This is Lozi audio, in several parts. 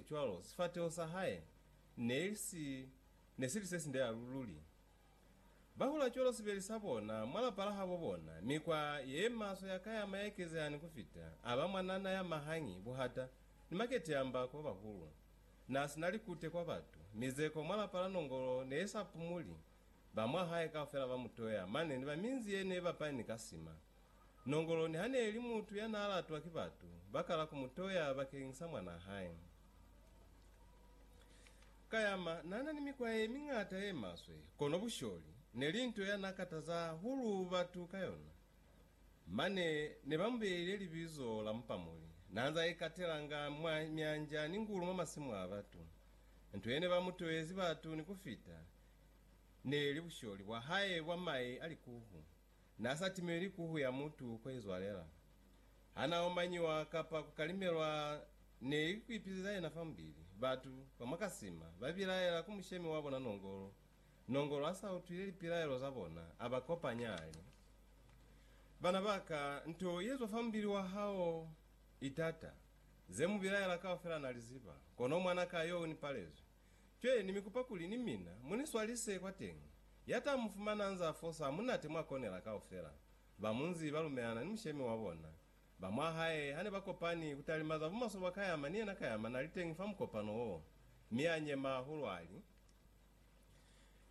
Cwalo, sifateho sa hae ne si ne si li se sinde halu luli. Ba hula cwalo sibeli sa bona mwa lapa la habo bona. Mikwa ye maswe ya kayama ya ekezeha ni ku fita, a ba mwanana ya mahangi, buhata, ni maketeyamba kwa bahulu. Na si na likute kwa batu. Mizeko mwa lapa la nongolo ne i sa pumuli. Ba mwa hae kaufela ba mu toya mane ni ba minzi ye ne i bapani ka sima. Nongolo niha neeli mutu yanaalatwa ki batu, bakala kumutoya bakeñsa mwanaa hae. Kayama naana ni mikwa yemiñata yemaswe, kono busholi neli nto yanaakataza hahulu batu ka yona. Mane nebamubeile libizo la Mupamuli. Naanze aikatelanga mwa myanja ni ngulu mwa masimu a batu. Nto yene bamutoyezi batu ni kufita neeli busholi bwahae bwa mai a likuhu. Na sa timeli ku huya mutu ko izwalela. Ha na omanyiwa kapa ku kalimelwa ne li ku ipizeza yena fa mubili. Batu ba mwa ka sima ba bilaela ku mushemi wa bona Nongolo. Nongolo ha sa utwile lipilaelo za bona, a ba kopanya a li, Bana ba ka, nto ye zwa fa mubili wa hao i tata. Ze mu bilaela kaufela na li ziba, kono mwana ka yo u ni palezwi. Cwe, ni mi kupa kuli ni mina mu ni swalise kwateñi. Ya ta mu fumana anz'a fosa hamunate mwa konela kaufela. Ba munzi ba lumelana ni mushemi wa bona. Ba mwa hae ha ne ba kopani ku talima za bumaswe bwa Kayama ni yena Kayama na li teñi fa mukopano wo. Mi a nyema hahulu a li,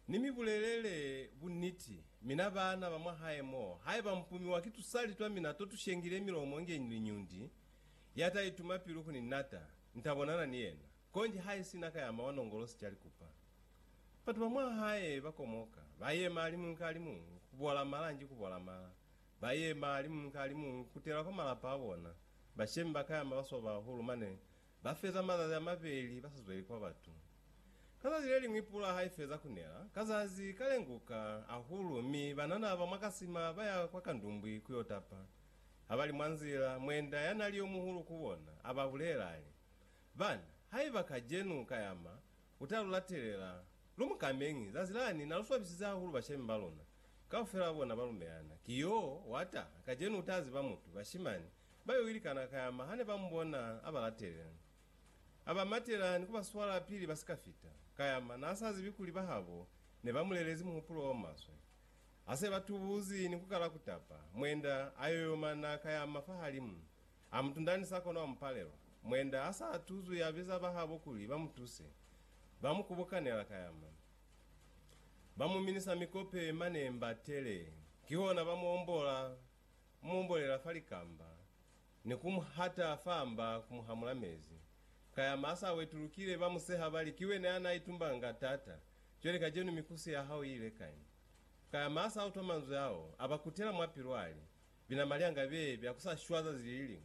Ni mi bulelele buniti, mina baana ba mwa hae mo, haiba mupumiwa ki tusali twa mina to tu shengile milomo nge liñundi, ya ta ituma pilu ku ni nata, ni ta bonana ni yena. Konji haisina ka ya mawa nongolosi ca likupa. Batu ba mwa hae ba komoka, ba yema alimuñwi ka alimuñwi, ku bola mala nji ku bola mala. Ba yema alimuñwi ka alimuñwi, ku kutela kwa malapa a bona. Bashemi ba ka ya mabaswa bahulu, mane ba feza mazazi a mabeli ba sa zweli kwa batu. Ka zazi le liñwi pula ha i feza ku nela, ka zazi ka lenguka hahulu, mi banana ba mwa kasima ba ya kwa kandumbwi ku yo tapa. Ha ba li mwa nzila, mwenda ya na li yo muhulu ku bona, a ba bulela, a li, Bana, haiba kacenu ka yama ku ta lu latelela, lu mu kameñi. Zazi lani na lu swabisize hahulu bashemi ba luna, kaufela ba bona ba lumelana. Ki yo wa taha kacenu u ta ziba mutu. Bashimani ba yo ilikana ka yama ha ne ba mu bona a ba latelela. A ba matelani ku ba swala pili ba si ka fita. Ka yama na sa zibi kuli bahabo ne ba mu lelezi muhupulo o maswe. Ha se ba tubuzi ni ku kala ku tapa, mwenda a yoyomana ka yama fahalimu A mutundani sa kono wa mu palelwa. Mwenda ha sa tuzwi ya biza bahabo kuli ba mu tuse. Ba mu kubukanela ka yama. Ba mu minisa mikope mane mba tele. Kihona ba mu ombola, ku mu ombolela fa likamba, ni ku mu hata fa mba ku mu hamula mezi. Ka yama ha sa wetulukile, ba mu seha ba li, Ki wena ya na itumbanga taata. Cwale kacenu mikusi ya hao i ile kai? Ka yama ha sa utwa manzwi ao, a ba kutela mwa pilu a li, Binama lya nga bye bya ku sa shwa zazi li liñwi.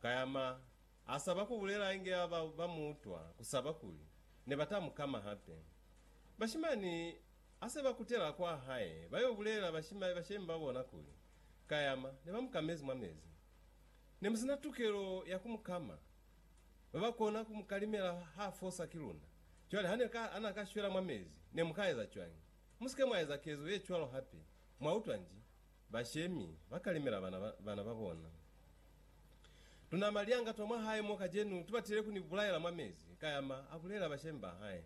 Kayama a saba ku bulela inge ba ba ba mu utwa ku saba kuli ne ba ta mu kama hape. Bashimani ha se ba kutela kwa hae ba yo bulela bashima, bashemi ba bona kuli Kayama ne ba mu kamezi mwa mezi. Ne mu si na tukelo ya ku mu kama. Ba ba kona ku mu kalimela ha fosa ki luna. Cwale ha ne ka, ha na ka shwela mwa mezi, ne mu ka eza cwañi? Mu si ke mwa eza kezo ye cwalo hape. Mwa utwa nji? Bashemi ba kalemela bana ba bana ba bona. Tunama lianga twa mwa hae mo kacenu tubatile ku ni bulaela mwa mezi, Kayama a bulela bashemi ba hae.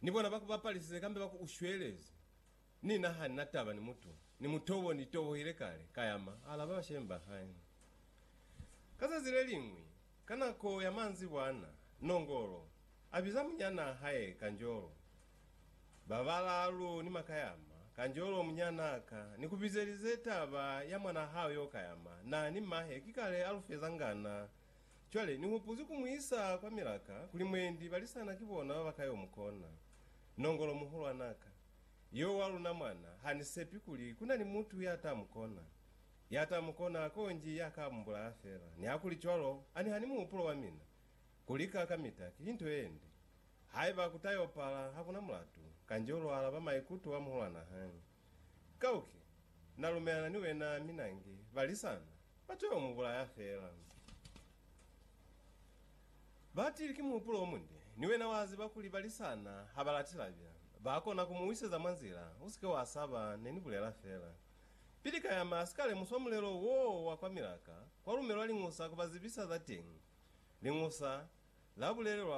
Ni bona ba ku bapalisize kambe ba ku ushwelezi. Ni na ha ni na taba ni mutu, ni mutobo ni tobohile kale, Kayama a alaba bashemi ba hae. Ka zazi le liñwi, ka nako ya manzibwana, Nongolo a biza munyanaa hae Kanjolo. Babalaalu ni makayama, kanjolo munyana ka ni kubizelize taba ya mwanaa hao yo kayama, na ni mahe ki kale alu fezanga na. Cwale ni hupuzi ku muisa kwa milaka kuli mwendi balisana ki bona baba ka yo mukona. Nongolo muhulwana ka, yo wa luna mwana, ha ni sepi kuli kuna ni mutu ya ta mukona. Ya ta mukona konji ya ka mubulaya fela. Nihakuli cwalo, ani ha ni muhupulo wa mina, kulika kamita ki nto yende. Haiba ku ta yo pala, ha ku na mulatu. Kanjolu u alaba maikuto a muhulwana hañwi. Kauke, na lumelana ni wena, mi nange, balisana, ba to yo mu bulaya fela. Batili ki muhupulo o munde, ni wena wa ziba kuli balisana ha ba lati labya. Ba kona ku mu wiseza mwa nzila, u si ke wa saba, ne ni bulela fela. Pili Kayama a si ka lemuswa mulelo woo wa kwa Milaka, kwa lumelwa liñusa ku ba zibisa za teñi. Liñusa la bulelelwa